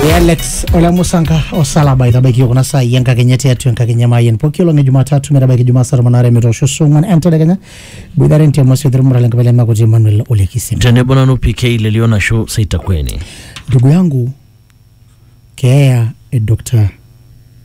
e alex ole musanka osalaba itabaiki kuna saai enkakenya tiatua enkakenya maayen pooki olong e jumatatu metabaiki jumaa saa tomon aare metoosho saa ong'uan entedekenya boitare ntiamasi othirmura lenkabila emakuti emmanuel olekisim tenebo nanu pk lelio nashu seitakweni ndugu yangu keeya e dr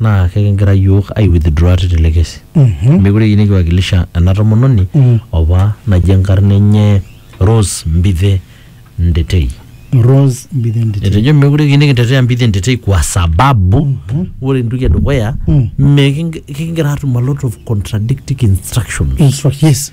naa kekigira iyiook ai withdraw tele kesi. Meekure eyieu nikiwakilisha ena tomononi opa naji enkarna enye Rose Mbithe Ndetei. Rose Mbithe Nditei. Etejo meekure eyieu nikitetea Mbithe Ndetei kwa sababu ore entoki edukuya mekingira aatum a lot of contradicting instructions. Instruct- yes.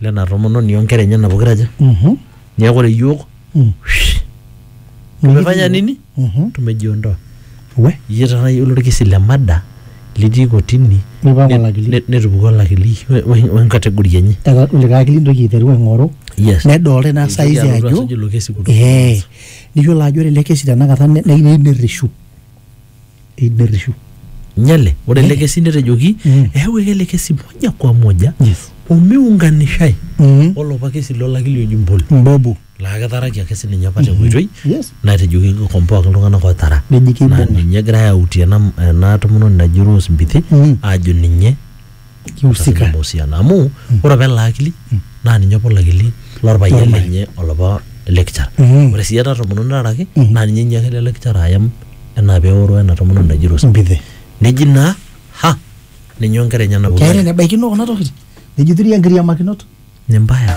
lena tomononi onkera enyena pokira aja Mhm. niaku ore iyiook Mm. tumefanya nini Mhm. tumejiondoa We. iyie tayiolo orkesi le mada litii kotini Nipang ne- olakili. ne- netupuku olakili we- we- wenkategori enye Eta kulikae akili intoki aiteru aing'oru yes nedolta ina Eitoki saizi alotu ajo asuj ilo kesi kutoka ee niyiolo ajo ore ele kesi tenakata ne- ne- neyieu nerreshu eiderishu nyale ore ele kesi netejoki Mm. eeu ele kesi moja kwa moja yes omiunganishai mm. olopa kesi lolaki le Ojimboli mbobu laa ketaraki ake sininye apa tenkoitoi yes natejoki kikomboaki iltung'anak ootara neji naa keibung'a ninye egirai autie ena ena tomononi naji Rose Mbithi Mm. aajo ninye kiusika Ina mahusiano amu ore apa ele akili naa ninye apa olakili lorpayian Lorpayian. lenye olapa lecturer Mm. ore sii ena tomononi naaraki naa ninye inyiaka ele lecturer ayam enaa peoro ena tomononi naji Rose mbidhi neji naa ha ninye onkera enyenak keeta pokira enebaikino kuna tokitin nejituri enkiriamakinot nembaya